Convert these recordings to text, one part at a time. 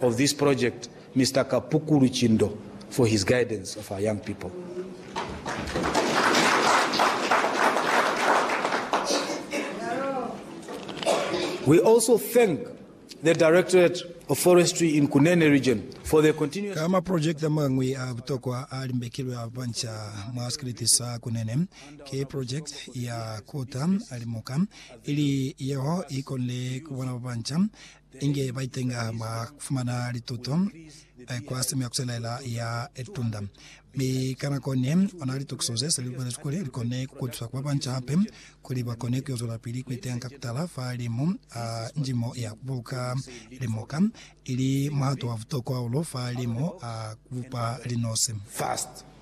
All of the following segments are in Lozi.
of this project Mister Kapukulu Chindo for his guidance of our young people. We also thank the Directorate of Forestry in Kunene Region for their continuous Ka maprojekiti amañwi a butokwa a limbekilwe a banca mwa sikiliti sa Kunene, ki projekiti ya Kuta Limuka, ili yeo i konile ku bona babanca Inge baitenga mwa kufumana lituto kwa simu ya kuselaela ya litunda. Mi ka nako ne, ona litukiso ze seli lubelezwi kuli likone kukutusa ku babanca hape kuli bakone kuyo zwelapili kuitenga ka kutala fa limu a njimo ya kubuluka limoka, ili muhato wa butokwa hahulu fa limu a kubupa linosi.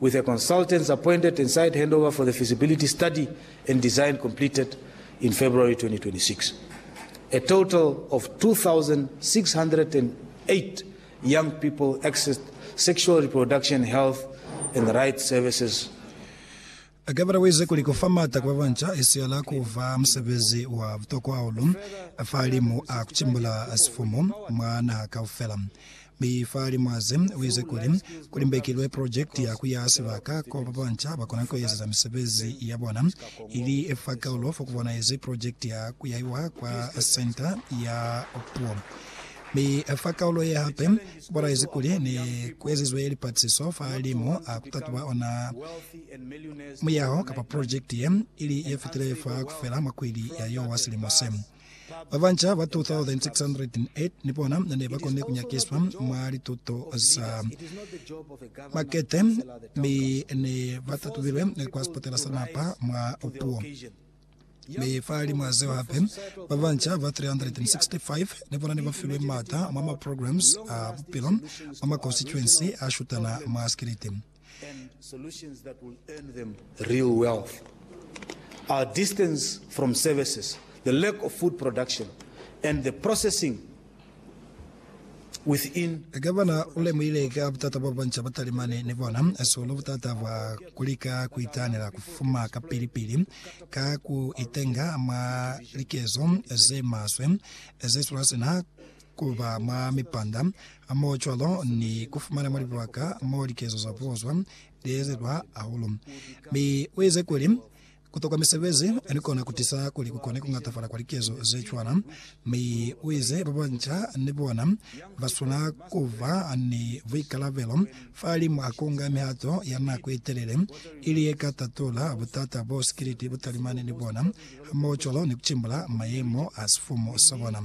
with a consultants appointed and site handover for the feasibility study and design completed in February 2026. A total of 2,608 young people accessed sexual reproduction health and rights services Gavana waize kuli kufa maata kwa babanca isihala kuba musebezi wa butokwa hahulu fa limu a kucimbula sifumu mwa naha kaufela. Mi fa limo aze, uize kuli, Kuli mbekilwe project ya kuyaha sibaka ko babanca bakona kuezeza misebezi yabona, ili fa kaulo fo kubonahezi project ya kuyahiwa kwa Centre ya Puo. Mi fa kaulo ye hape, kubonahezi kuli ne kuezizwe lipatlisiso fa limo a kutatuba ona muyaho kapa project ye, ili yefitile fa kufela mwa kwili ya yo wa silimo se. Babanca ba 2,608 ni bona ne ba konile ku nyakiswa mwa lituto za makete mi ne ba tatubilwe kwa sipatela sa napa mwa puo. Mi fahalimwi a zeo hape, babanca ba 365 ni bona ne ba filwe mata mwa maprograms a bupilo mwa makonstituensi a shutana mwa sikiliti. and solutions that will earn them real wealth. Our distance from services, the lack of food production, and the processing within Gavana u lemuhile ka butata bwa banca ba talimani ni bona sihulu butata bwa ku lika ku itahanela ku fuma kapili-pili ka ku itenga mwa likezo ze maswe ze tula sina ku ba mwa mipanda mo cwalo ni ku fumana mwa libaka mo likezo za puo zwa liezezwa hahulu. Mi u ize kuli, Ku tokwa misebezi ni kona ku tisa kuli ku kone ku ñatafala kwa likezo ze cwana. Mi u ize ba banca ni bona ba swanela ku ba ni buikalabelo fahalimwa a ku nga mihato ya nako ye telele ili ye ka tatula butata bo sikiliti bu talimani ni bona, hamoho cwalo ni ku cimbula mayemo a sifumu sa bona.